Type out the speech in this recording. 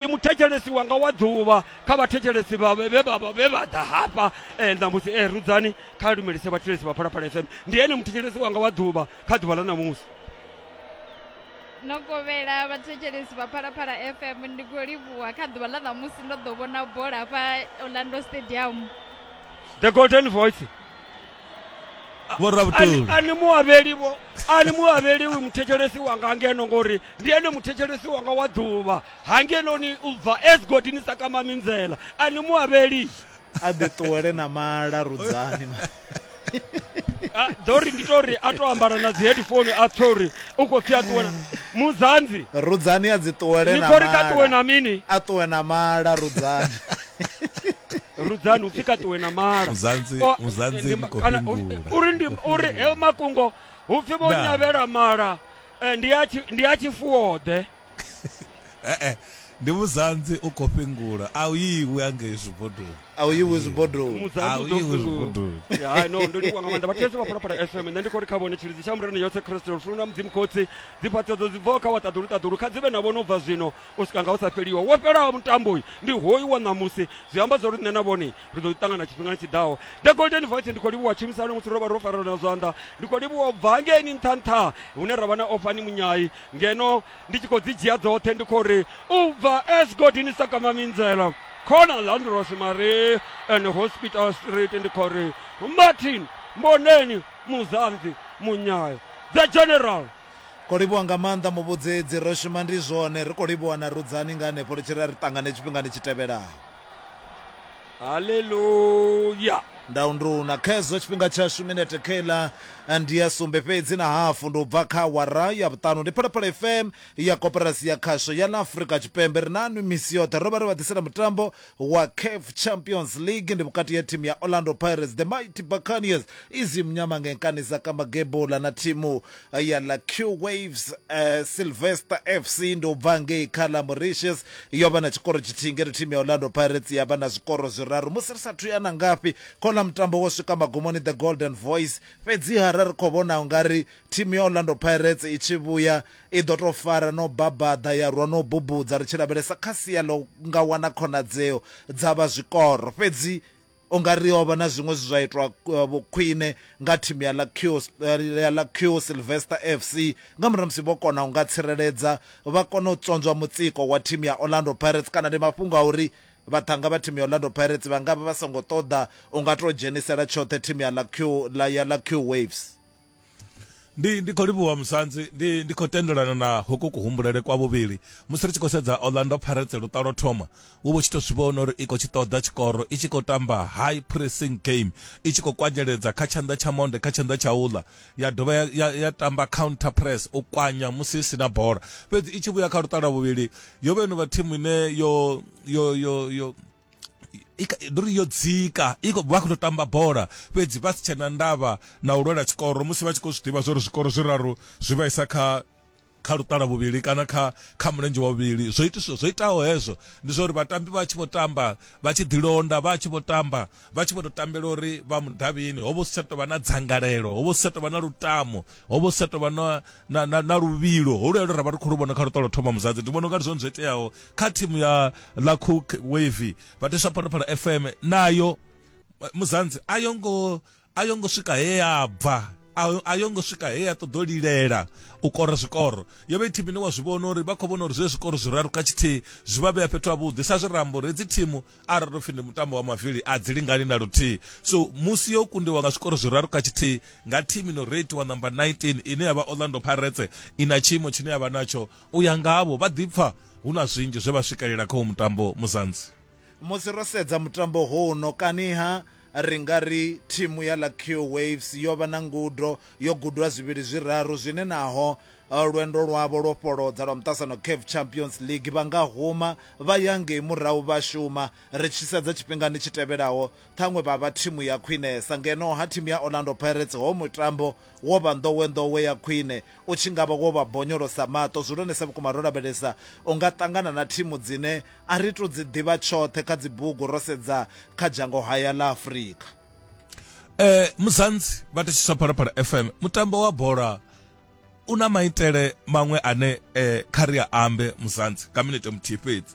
ndi muthetshelesi wanga wa ḓuvha kha vhathetshelesi vha vhe vha vha vhe vha ḓa hafha eh, ṋamusi e rudzani kha lumelise vhathetshelesi vha phalaphala fm ndi ene muthetshelesi wanga wa ḓuvha kha ḓuvha ḽa ṋamusi no kovhela vhathetshelesi vha phalaphala fm ndi khou livhuwa kha ḓuvha ḽa ṋamusi ndo ḓo vhona bola hafha orlando stadium the golden voice vho ravhutuli a ni muavheli vho a ni muavheli uyu muthetshelesi wanga ngeno ngori ndi ene muthetshelesi wanga wa ḓuvha ha ngeno ni u bva as god ni sa kama minzela a ni muavheli a ḓi ṱuwele na mala rudzani ḓo ri ndi to ri a to ambara na dzi headphone a pfe uri u khou pfi a ṱuwe muzanzi rudzani a dzi ṱuwele na mala ni khou ri kha ṱuwe na mini a ṱuwe na mala rudzani rudzani upfi ka ṱuwe na mala uri heyo makungo upfi vho nyavhela mala eh, ndi a tshifuwoḓe eh, eh. ndi muzanzi u khou fhingula a u iwi angei zwibodoni a u iwi zwibodoni a u iwi zwibodoni hai no ndo livhuwa nga maanḓa vhathu yesu vha phalaphala fm nṋe ndi khou ri kha vhone tshilidzi tsha murena yothe khristo lufuno na mudzimu khotsi dzifhaṱedzo dzi bvaho kha waṱaḓulu ṱaḓulu kha dzi vhe na vhono bva zwino u swika nga u sa fheliwa wo fhelaho mutambo uyu ndi hoyu wa ṋamusi zwi amba zwa uri nṋe na vhone ri ḓo ṱangana tshifhingani tshi ḓaho the golden voice ndi khou livhuwa tshumisano musi ro vha ro farelana zwanḓa ndi khou livhuwa u bva hangeini nṱha nṱha hune ra vha na ofani munyai ngeno ndi tshi khou dzi dzhia dzoṱhe ndi khou ri u bva s godini sakama minzela khona landros mare and hospital street ndi khou ri martin mboneni muzanzi munyayo the general Ko livhuwa nga maanḓa muvhudzedzi. Ro shuma ndi zwone, ri khou livhuwa na Rudzani nga hanefho ri tshi ri a ri ṱangane tshifhingani tshi tevhelaho. Haleluya! Ndau nduna khezwo tshifhinga tshashu minete kheiḽa ndi ya sumbe fhedzi na hafu ndi u bva kha awara ya vhuṱanu. Ndi Phalaphala FM ya Koporasi ya Khasho ya ḽa Afrika Tshipembe. Ri na nwi misi yoṱhe. Ro vha ri vha ḓisela mutambo wa CAF Champions League ndi vhukati ha thimu ya Orlando Pirates, the Mighty Buccaneers, izimnyama ngenkani zakamagebhula na thimu ya ḽa Q Waves. Uh, Sylvester FC ndi u bva ngei kha ḽa Mauritius yo vha na tshikoro tshithihi ngeno thimu ya Orlando Pirates ya vha na zwikoro zwiraru musi ri sathu ya na ngafhi kho ḽa mutambo wo swika magumoni the Golden Voice. Fhedziha ra ri khou vhona ungari thimu ya Orlando Pirates i tshi vhuya I ḓo tou fara no babaḓa ya rwa no bubudza ri tshi lavhelesa kha sia ḽo nga wana khonadzeo dza vha zwikoro. Fhedzi u nga ri o vha na zwiṅwe zwe zwa itwa vhukhwine nga thimu ya ḽa Q ya ḽa Q Sylvester FC nga murahu ha musi vho kona u nga tsireledza vha kona u tswonzwa mutsiko wa thimu ya Orlando Pirates kana ndi mafhungo a uri vhaṱhannga vha thimu ya Orlando Pirates vha nga vha vha songo ṱoḓa u nga tou dzhenisela tshoṱhe thimu ya ḽa Q ḽa ya ḽa Q Waves. ndi ndi khou livhuwa musanzi ndi ndi khou tendelana na hoko kuhumbulele kwa vhuvhili musi ri tshi khou sedza orlando pirates lutalo thoma wo vho tshi tou zwi vhona uri i khou tshi ṱoḓa tshikoro i tshi khou tamba high pressing game i tshi khou kwanyeledza kha tshanḓa tsha monde kha tshanḓa tsha uḽa ya dovha ya, ya, ya tamba counter press u kwanya musi i sina bola fhedzi i tshi vhuya kha lutalo vhuvhili yo vheno vha thimu ine yo yo yo yo ndo ri yo dzika i vha khou tou tamba bola fhedzi vha si tshena ndavha na u lwela tshikoro musi vha tshi khou zwi ḓivha zwori zwikoro zwiraru zwi vhaisa kha kha luṱala vhuvhili kana kha kha mulenzhe wa vhuvhili zwo itiswa zwo itaho hezwo ndi zwa uri vhatambi vha tshi vho tamba vha tshi ḓilonda vha tshi vho tamba vha tshi vho tou tambela uri vha mudavhini ho vha si tsha tou vha na dzangalelo ho vha si tsha tou vha na lutamo ho vha si tsha tou vha na na na luvhilo ho lwelo ra vha ri khou lu vhona kha luṱolo thoma muzadzi ndi vhona unga ndi zwone zwo iteaho kha thimu ya la cook wavy vhateswa phalaphala fm nayo eh, muzanzi a yo ngo a yo ngo swika he ya bva a- a yo ngo swika he ya ṱoḓo lilela u kora zwikoro yo vha i thimu ine wa zwi vhona uri vha khou vhona uri zwe zwikoro zwiraru kha tshithihi zwi vha vhea fhethu havhuḓi sa zwi rambo uri hedzi thimu arali ro pfi ndi mutambo wa mavili a dzi lingani na luthihi so musi yo kundiwa nga zwikoro zwiraru kha tshithihi nga thimu ino reitiwa number 19 ine ya vha orlando pirates i na tshiimo tshine ya vha natsho U ya ngavho, vha ḓipfa hu na zwinzhi zwe vha swikelela kha u mutambo Muzanzi. Musi ro sedza mutambo huno kaniha ri nga ri thimu ya Lakio Waves yo vha na ngudo, yo gudwa zwivhili zwiraru zwine naho eh, lwendo lwavho lwo fholodza lwa muṱasano CAF Champions League vha nga huma vha ya ngei murahu vha shuma. Ri tshi sedza tshifhingani tshi tevhelaho, ṱhaṅwe vha vha thimu ya khwinesa. Ngeno ha thimu ya Orlando Pirates ho mutambo Wo vha nḓowenḓowe ya khwine. U tshi nga vha wo vha bonyolosa maṱo. Zwi hulwanesa vhukuma ro lavhelesa. U nga ṱangana na thimu dzine a ri tou dzi ḓivha tshoṱhe kha dzibugu ro sedza kha dzhango haya ḽa Afrika. E, Muzansi vha thetshiswa Phalaphala FM. Mutambo wa bola u na maitele maṅwe ane e, kha ri a ambe Muzansi nga minete muthihi fhedzi.